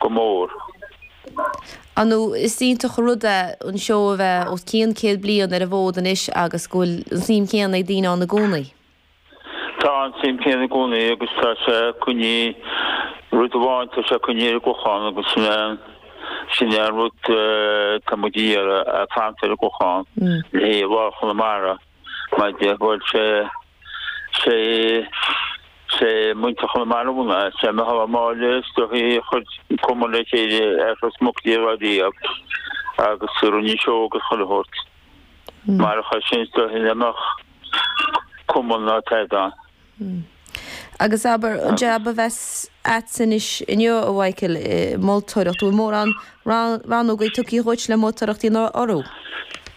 go mór. An is iontach an rud é an seó a bheith os cionn céad bliain ar an bhfód anois agus go bhfuil an suim chéanna ag daoine ann i gcónaí? Tá an suim chéanna i gcónaí agus tá sé ag coinneáil, rud amháin, tá sé ag coinneáil ar an gClochán agus sin é an, sin é an rud atá muid a iarraidh, fanacht ar an gClochán, le haghaidh phobal Chonamara mar go bhfuil sé Sé sé muintir Chonamara mar is é Micheál Ó Máille stocaí a chuir cumann le chéile ar dtús naoi déag dhá riab agus rinne seó agus chuile shórt mar a chuir sin do shin amach cumann mar atá ann. Agus abair an jab a bheas agatsa anois inniu a Mhaidhcil ag moltóireacht bhfuil mórán rannógaí tugtha dhuit le moltóireacht a dhéanamh orthu?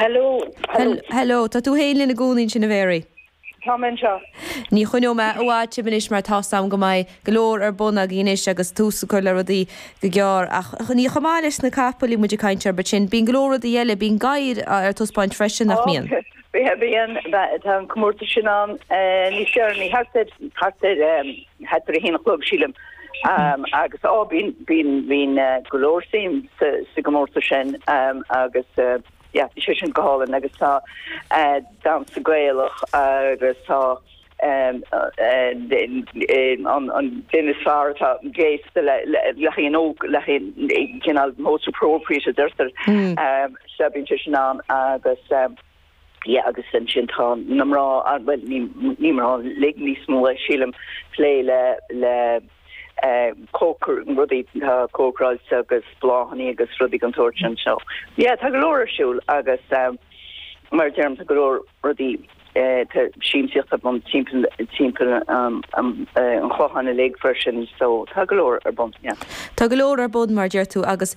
Hello, hello. Hello, tá tú féin linn i gcónaí ansin, a Mhary. Tá mé anseo. Ní choinneoidh mé i bhfad sibh anois mar tá's a'm go mbeidh go leor ar bun agaibh anois agus tús a chur le rudaí go gearr. Ach ní chomh maith leis na capaill a bhí muid ag caint orthu ansin, bíonn go leor rudaí eile, bíonn gadhair ar taispeáint freisin, nach mbíonn? Bíonn, tá an comórtas sin ann níos deireanaí, thart ar, thart ar. Thart ar a haon a chlog, sílim, agus á bíonn go leor suim sa gcomórtas sin agus bhí sé sin go hálainn agus tá damhsa Gaelach agus tá an duine is fearr atá gléasta le haon óg le haon cineál most appropriate a deirtear so bíonn sé sin ann agus. Yeah, agus ansin tá na mná, bhuel, ní, ní mná uilig níos mó, sílim, plé le, le cócaireacht, rudaí atá cócaráilte agus bláthanna agus rudaí den tsórt sin anseo. Yeah, tá go leor ar siúl agus, mar a deirim, tá go leor rudaí, tá siamsaíocht ar bun timpeall, timpeall an Chlocháin uilig freisin so tá go leor ar bun, yeah. Tá go leor ar bun, mar a deir tú, agus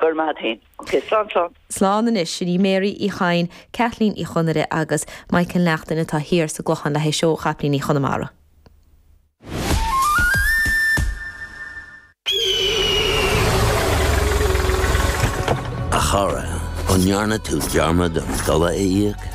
Go raibh maith féin. Ok, slán slán. Slán anois, sin í Mary Uí Chadhain, Caitlín Uí Chonaire agus Michael Naughton atá thiar sa gClochán le haghaidh seó Chapaillíní Chonamara. A chara, an ndearna tú dearmad an dola a íoc?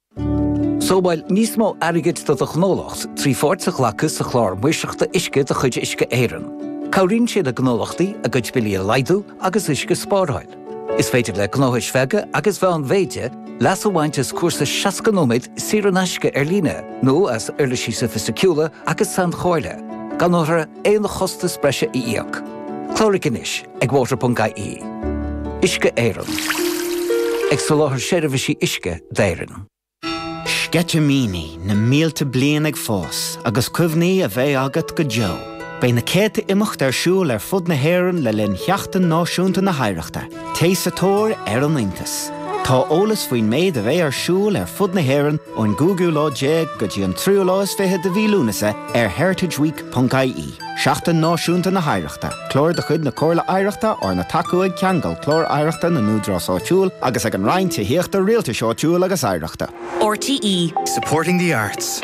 Sábháil níos mó airgid do do ghnólacht trí pháirt a ghlacadh sa Chlár Maoirseachta Uisce de chuid Uisce Éireann. Cabhraíonn sé le gnólachtaí a gcuid billí a laghdú agus uisce a spáráil. Is féidir le gnóthais bheaga agus mheánmhéide leas a bhaint as cúrsa 60 nóiméad saor in aisce ar líne nó as uirlisí sofaisticiúla agus sainchomhairle gan aon chostas breise a íoc. Cláraigh anois ag water.ie. Uisce Éireann. Ag soláthar seirbhísí uisce d'Éirinn. Sceitimíní na mílte bliain ag fás agus cuimhní a bheidh agat go deo. Beidh na céadta imeacht ar siúl ar fud na hÉireann le linn Sheachtain Náisiúnta na hOidhreachta. Téigh sa tóir ar an iontas. Tá eolas faoin méid a bheidh ar siúl ar fud na hÉireann ón gcúigiú lá déag go dtí an tríú lá is fiche de mhí Lúnasa ar heritageweek.ie. ie. Seachtain Náisiúnta na hOidhreachta, clár de chuid na Comhairle Oidhreachta arna tacú ag Ceangal, Clár Oidhreachta na nÚdarás Áitiúil, agus ag an Roinn Tithíochta, Rialtais Áitiúil agus Oidhreachta. RTÉ. Supporting the arts.